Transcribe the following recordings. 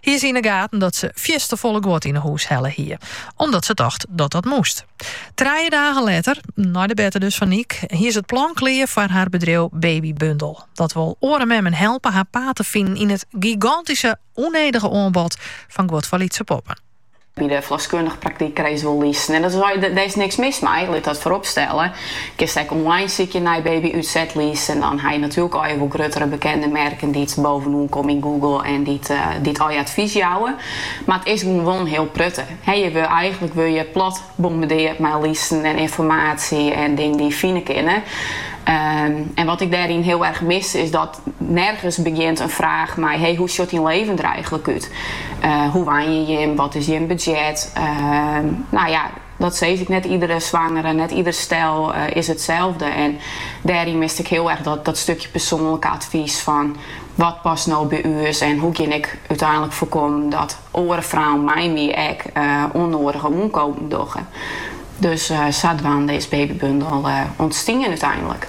hie se yn 'e gaten dat se fierstefolle guod yn 'e hûs helle hie, omdat se tocht dat dat moast. Trije dagen letter, nei de berte dus fan Niek, hie se it plan klear foar har bedriuw Babybundel. Dat wol oare memmen helpe har paad te finen yn it gigantyske, ûnnedige oanbod fan guod foar lytse poppen. By de ferloskundige praktyk krijst wol listen en dat, dêr is niks mis mei, lit dat foarop stelle. Kinst ek online sykje nei babyútsetlist en dan ha je natuerlik al je wol gruttere bekende merken dy't bovenoan komme yn Google en dy't al je advys jouwe. Mar it is gewoan wol in hiel protte. Je wurde eigenlik wurde je plat bombardearre mei listen en ynformaasje en dingen dy je fine kinne. En wat ik dêryn hiel erg mis is dat. Nergens begjint in fraach mei hé, hoe sjut dyn leven der eigenlik út? Hoe wenje jim? Wat is jim budzjet? Nou ja, dat sis ik. Net iedere swangere, net ieder stel is itselde. En dêryn mist ik hiel erg dat stukje persoanlike advys fan wat past no by ús en hoe gean ik úteinlik foarkommen dat oare frouen mei my ek ûnnoadige oankopen dogge. Dus sadwaande is Babybundel ûntstien úteinlik.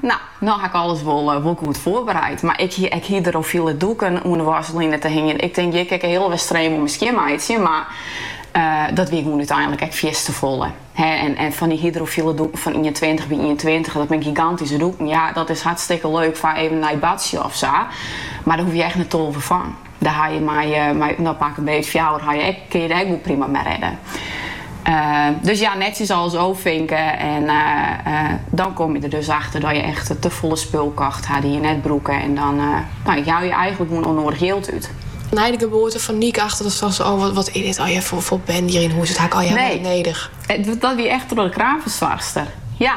Nou, no ha ik alles wol goed foarbereid, mar ik hie ek hydrofile doeken oan de wasline te hingjen. Ik tink hjir kin ik de hiele Westereen wol mei skjinmeitsje, mar dat wie gewoan úteinlik ek fierstefolle. En fan dy hydrofile doeken fan ientweintich by ientweintich, dat binne gigantyske doeken. Ja, dat is hartstikke leuk foar even nei badsje of sa, mar dêr hoege je echt net tolve fan. Dêr ha je mei, mei no pak 'm beet fjouwer ha je ek, kin je der ek wol prima mei redde. dus ja, netjes alles ôffinke en dan kom je der dus achter dat je echt te folle spul kocht ha dy't je net brûke en dan no, jou je eigenlik gewoan ûnnoadich jild út. Nei de geboarte fan Niek achter datst tochtst oh, wat wat is dit allegear foar bende hjir yn hûs, dit ha ik allegear net nedich. Nee, dat wie echt troch de kraamfersoarchster, ja.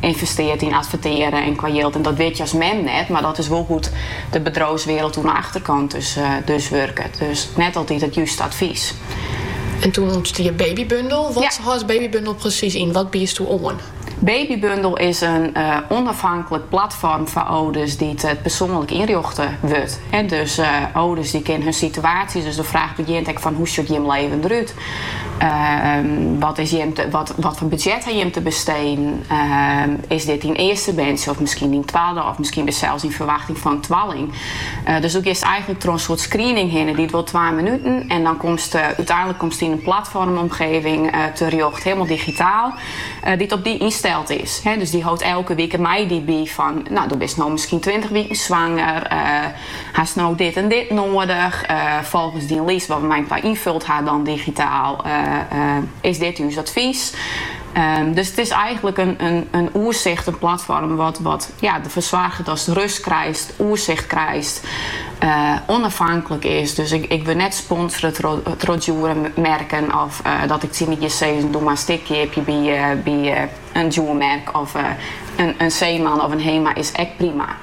ynvestearret yn advertearjen en qua jild. En dat wit je as mem net, mar dat is wol hoe't de bedriuwswiereld oan 'e achterkant dus wurket. Dus net altyd it juste advys. En toen ûntstie Babybundel. Wat hâldt Babybundel presys yn? Wat biedst doe oan? Babybundel is in ûnafhanklik platform foar âlders dy't persoanlik ynrjochte wurdt. Dus âlders kinne hun situaasje, dus de fraach begjint ek fan hoe sjocht jim leven derút? Wat is jim te, wat, wat foar budzjet ha jim te besteden? Is dit dyn earste berntsje of miskien dyn twadde of miskien bist sels yn ferwachting fan in twalling? Dus doe giest eigenlik troch in soart screening hinne, duorret wol twa minuten en dan komste úteinlik komste yn in platformomgeving terjocht, hielemaal digitaal, dy't op dy ynsteld is. Dus dy hâldt elke wike mei dy by fan, no doe bist no miskien tweintich wiken swanger, Hast no dit en dit noadich? Folgens dyn list wat we mei inoar ynfuld ha dan digitaal, is dit ús advys. Dus it is eigenlik in oersicht, in platform wat derfoar soarget datst rust krijst, oersicht krijst, onafhanklik is. Dus ik wurd net sponsore troch djoere merken of dat ik tsjin dy sis doch mar in stik keapje by in djoer merk of in Zeeman of in Hema is ek prima.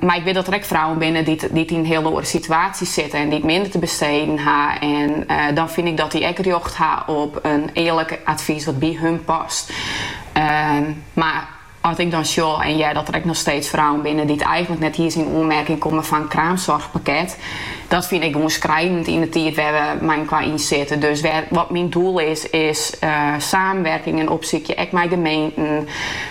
Mar ik wit dat der ek frouwen binne dy't yn in hiele oare situaasje sitte en dy't minder te besteden ha. En dan fyn ik dat dy ek rjocht ha op in earlik advys wat by hun past. Mar as ik dan sjoch en hear dat der ek noch steeds frouwen binne dy't eigenlik net iens yn oanmerking komme foar in kraamsoarchpakket, dat fyn ik gewoan skrinend yn de tiid wêr we meiinkoar yn sitte. Dus wat myn doel is, is saamwerkingen opsykje, ek mei gemeenten.